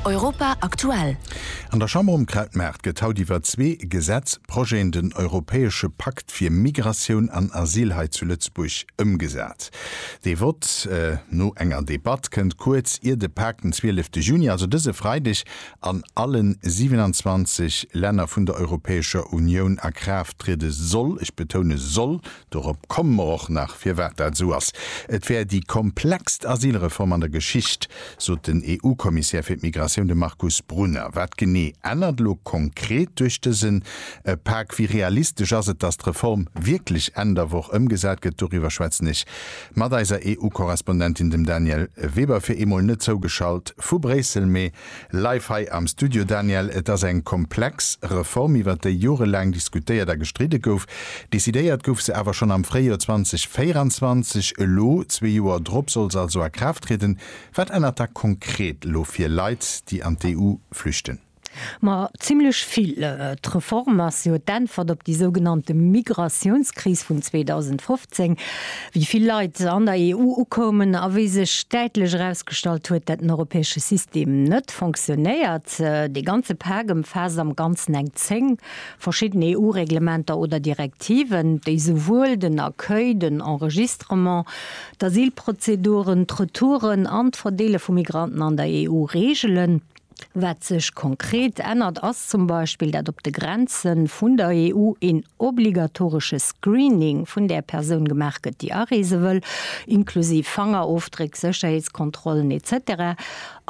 Europa aktuell. An der Chamber um Krautmaart gëtt haut iwwer zwee Gesetzprojeten, den europäesche Pakt fir Migratioun an Asyl hei zu Lëtzebuerg ëmgesat. Dee Vott no enger Debatt kënnt kuerz ier de Pak den zwielefte Juni, also dëse Freideg, an alle 27 Länner vun der Europäescher Unioun a Kraaft triede soll, ech betoune soll, Dorop komme mer och nach, firwat dat esou ass. Et wär déi komplexst Asylreform an der Geschicht, sot den EU-Kommissär fir d'Migratioun, de Markus Brunner. Wat genee ännert elo konkret duerch dësen Pak? Wéi realistesch ass et, datt d'Reform wierklech Enn der Woch ëmgesat gëtt? Doriwwer schwätzen ech mat eiser EU-Korrespondentin, dem Danièle Weber, fir eemol net zougeschalt vu Bréissel, mee Live hei am Studio Daniel, et ass eng komplex Reform iwwert déi jorelaang diskutéiert a gestridde gouf. Decidéiert gouf se awer schonn am Fréijoer 2024. Elo, zwee Joer drop, soll se also a Kraaft trieden. Wat ännert da konkret elo fir Leit, déi an d'EU flüchten? Ma zimmlech vill. D'Reform ass jo d'Äntwert op déi sougenannte Migratiounskris vun 2015. Zéng. Wéi vill Leit an der EU ukoumen a wéi sech däitlech erausgestallt huet, dat den europäesche System net fonctionnéiert. Dee ganze Pak ëmfaasst am Ganzen eng zéng verschidden EU-Reglementer oder Direktiven, déi souwuel den Accueil, den Enregistrement, d'Asylprozeduren, d'Retouren an d'Verdeele vu Migranten an der EU reegelen. Wat sech konkret ännert, ass zum Beispill, dat op de Grenze vun der EU een obligatoresche Screening vun där Persoun gemaach gëtt, déi areese wëll, inklusiv Fangerofdréck, Sécherheetskontrollen, etc.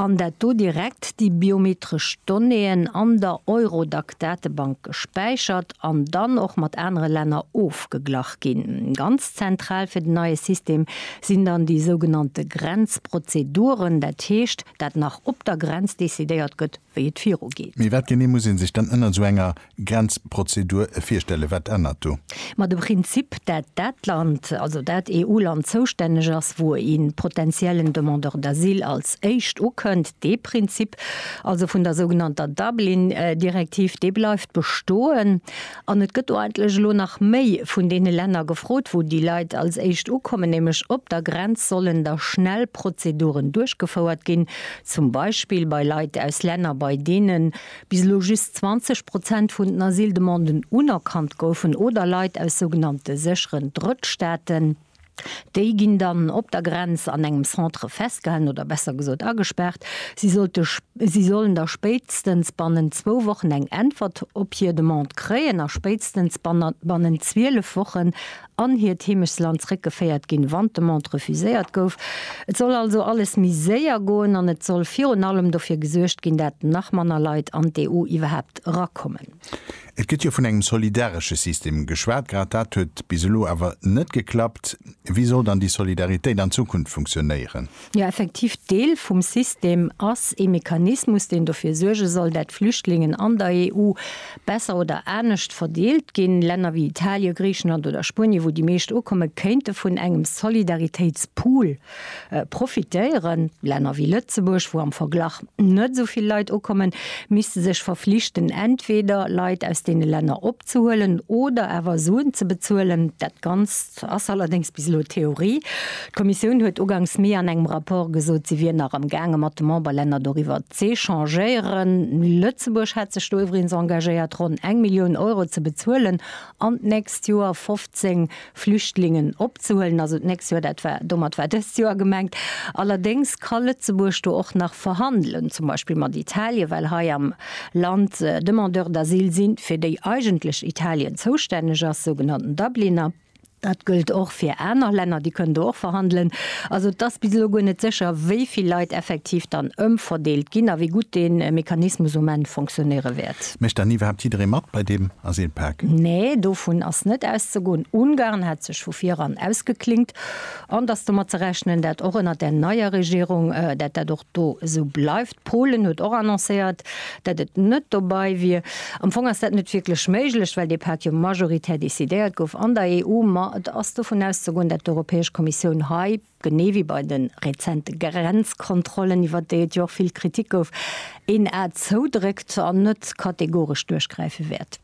An dat do direkt déi biometresch Donnéeën an der Eurodac-Datebank gespäichert an dann och mat anere Länner ofgeglach ginn. Ganz zentral fir den neie System sinn dann déi sougenannte Grenzprozeduren, dat heescht, dat nach op der Grenz decidéiert gëtt, wéi et viru geet. Mee wat genee muss ee sech dann ënnert esou enger Grenzprozedur virstellen? Wat ännert do? Ma de Prinzip, dat dat Land, also dat EU-Land zoustänneg ass, wou een potentiellen Demandeur d'asile als éischt ukënnt, dee Prinzip also vun der sougenannter Dublin-Direktiv, dee bleift bestoen. An et gëtt do eigentlech elo nach méi vun deene Länner gefrot, wou déi Leit als éischt ukommen, nämlech op der Grenz sollen da schnell Prozeduren duerchgefouert ginn, zum Beispill bei Leit aus Länner, bei deene bis elo just 20 Prozent vun den Asyldemanden unerkannt goufen, oder Leit aus sougenannte sécheren Drëttstaaten. Déi ginn dann op der Grenz an engem Centre festgehalen, oder besser gesot agespaart. Si sollte, si sollen da spéitstens bannent zwou Wochen eng Äntwert op hir Demande kréien a spéitstens bannent 12 Wochen an hiert Heemechtsland zréckgeféiert ginn, wann d'Demande refuséiert gouf. Et soll also alles méi séier goen an et soll virun allem dofir gesuergt ginn, dat nach manner Leit an d'EU iwwerhaapt erakommen. Et gëtt jo vun engem solidaresche System geschwat, grad dat huet bis elo awer net geklappt. Wéi soll dann déi Solidaritéit an Zukunft funktionéieren? Jo, effektiv, Deel vum System ass ee Mechanismus, deen dofir suerge soll, dat d'Flüchtlingen an der EU besser oder anescht verdeelt ginn. Länner wéi Italien, Griichenland oder Spuenien, wou déi meescht ukommen, kéinte vun engem Solidaritéitspool, Profitéieren. Länner wéi Lëtzebuerg, wou am Verglach net esou vill Leit ukommen, misste sech verflichten, entweder Leit aus deene Länner opzehuelen oder awer Suen ze bezuelen. Dat Ganzt ass allerdéngs bis elo Theorie. D'Kommissioun huet ugangs Mee an engem Rapport gesot, si wier nach am gaange mat de Memberlänner doriwwer z'echangéieren. Lëtzebuerg hätt sech do iwwregens engagéiert, ronn eng Millioun Euro ze bezuelen an d'nächst Joer 15 Flüchtlingen opzehuelen also d'nächst Joer, dat war, domat war dëst Joer gemengt. Allerdéngs ka Lëtzebuerg do och nach verhandelen, zum Beispill mat Italien, well hei am Land Demandeurs d'asile sinn, fir déi eigentlech Italien zoustänneg ass, sougenannten Dubliner. Dat gëllt och fir aner Länner, déi kënnen do och verhandelen. Also et ass bis elo guer net sécher, wéi vill Leit effektiv dann ëmverdeelt ginn a wéi gutt dee Mechanismus um Enn fonctionnéiere wäert. Mécht dann iwwerhaapt jidderee mat bei deem Asylpak? Nee, dovun ass net auszegoen. Ungarn hat sech vu vir eran ausgeklingt an et ass domat ze rechnen, dat och ënnert där neier Regierung, dat dat och do esou bleift. Polen huet och annoncéiert, dat et net dobei wier. Am Fong ass dat net wierklech méiglech, well dee Pak jo majoritär decidéiert gouf an der EU. Ma et ass dovun auszegoen, dat d'Europäesch Kommissioun hei, genee wéi bei de rezente Grenzkontrollen, iwwert déi et jo och vill Kritik gouf, een A zoudréckt an net kategoresch duerchgräife wäert.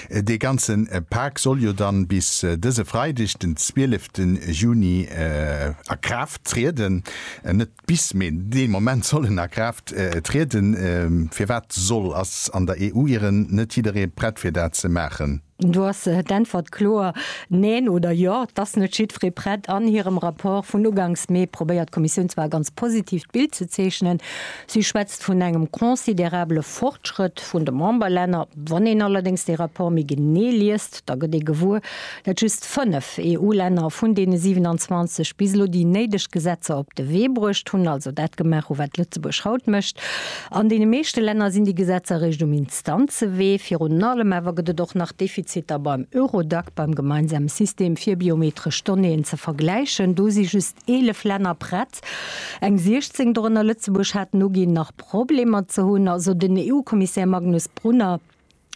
Dee ganze Pak soll jo dann bis dëse Freideg, den 12 Juni a Kraaft trieden. Net bis, mee dee Moment soll en a Kraaft trieden. Firwat soll? Ass an der EU ieren net jidderee prett fir dat ze maachen? Do ass d'Äntwert kloer Neen oder Jo. Et ass net jiddweree prett. An hirem Rapport vun ugangs Mee probéiert d'Kommissioun zwar e ganz positiivt Bild ze zeechnen. Si schwätzt vun engem considerabele Fortschrëtt vun de Memberlänner. Wann een allerdéngs dee Rapport méi genee liest, da gëtt ee gewuer, dat just 5 EU-Länner vun deene 27 bis elo déi néideg Gesetzer op de Wee bruecht hunn, also dat gemaach hu wat Lëtzebuerg haut mécht. An deene meeschte Länner sinn déi Gesetzer eréischt um Substanzewee. Virun allem awer gëtt et och nach Defiziter beim Eurodac, beim gemeinsame System fir biometresch Donnéeën ze vergläichen. Do si just 11 Länner prett, eng 16, dorënner Lëtzebuerg, haten uginn, nach Problemer ze hunn. Also den EU-Kommissär Magnus Brunner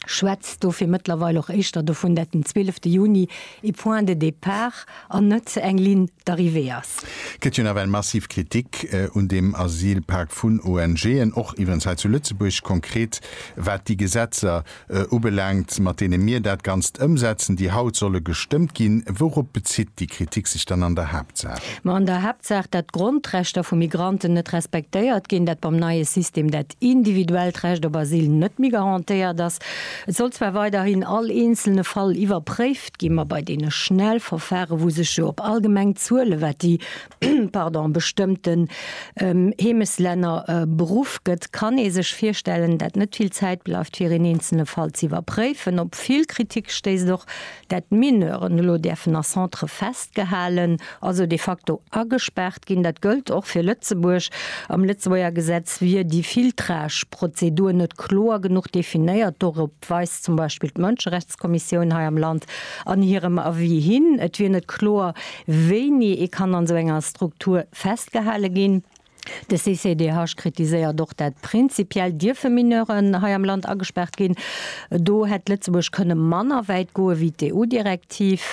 schwätzt do fir mëttlerweil och éischter dovun, dat den 12. Juni ee Point de départ an net eng Ligne d'arrivée ass. Gëtt jo nawell massiv Kritik un deem Asylpak vun ONGen, och iwwerens hei zu Lëtzebuerg, konkret wat déi Gesetzer ubelaangt, mat deene mir dat Ganzt ëmsetzen, déi haut solle gestëmmt ginn. Wourop bezitt déi Kritik sech dann an der Haaptsaach? Ma an der Haaptsaach, datt d'Grondrechter vu Migranten net respektéiert ginn, datt beim neie System dat individuellt Recht op Asyl net méi garantéiert ass, Et soll zwar weiderhin all eenzelne Fall iwwerpréift ginn, ma bei deene schnell Verfahre wou sech jo op allgemeng Zuele wat déi pardon bestëmmten Heemeslänner beruff gëtt, kann ee sech virstellen dat net vill Zäit bleift fir een eenzelne Fall ze iwwerpréifen. Op vill Kritik stéisst och dat d'Mineuren elo däerfen a Centre festgehalen, also de facto agespaart ginn. Dat gëllt och fir Lëtzebuerg. Am Lëtzebuerger Gesetz wier déi Filtrage-Prozedur net kloer genuch definéiert. Dorop weist zum Beispill d'Mënscherechtskommissioun hei am Land an hirem Avis hin. Et wier net kloer, wéini ee kann an esou enger Struktur festgehale ginn. De CCDH kritiséiert och, dat prinzipiell dierfe Mineuren hei am Land agespaart ginn. Do hätt Lëtzebuerg kënne manner wäit goe wéi d'EU-Direktiv.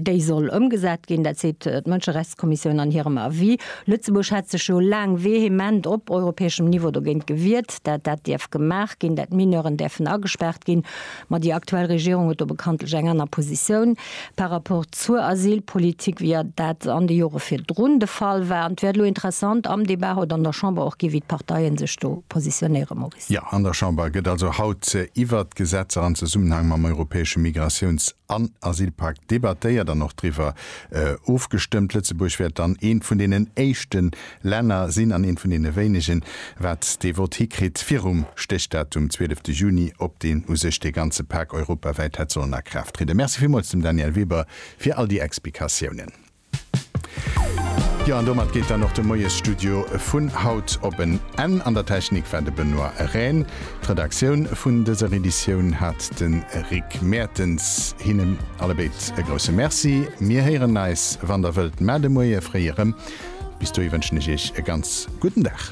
Déi soll ëmgesat ginn, dat seet d'Mënscherechtskommissioun an hirem Avis. Lëtzebuerg hat sech jo laang vehement op europäeschem Niveau dogéint gewiert, dat dat dierf gemaach ginn, dat Mineuren däerfen agespaart ginn. Ma déi aktuell Regierung huet do bekanntlech eng aner Positioun par rapport zur Asylpolitik, wéi dat an de Jore virdrun de Fall war. An et wäert elo interessant am Debat haut an der Chamber och ginn, wéi d'Parteien sech do positionéieren, Maurice. Jo, an der Chamber gëtt also haut iwwert d'Gesetzer am Zesummenhang mam europäesche Migratiouns an Asylpak debattéiert an och driwwer ofgestëmmt. Lëtzebuerg wäert dann eent vun deenen éischten Länner sinn an eent vun deene wéinegen, wat dee Vott hikritt virum Stéchdatum zwielefte Juni, op deen u sech dee ganze Pak europawäit hätt sollen a Kraaft trieden. Merci villmools dem Danièle Weber fir all déi Explikatiounen. Jo, an domat geet dann och de Moiesstudio vun haut op en Enn. An der Technik war de Benoît Rehn. D'Redaktioun vun dëser Editioun hat de Rick Mertens. Hinnen allebéid e grousse Merci. Mir héieren eis, wann der wëllt, mar de Moie fréi erëm. Bis dohi wënschen ech Iech e ganz gudden Dag.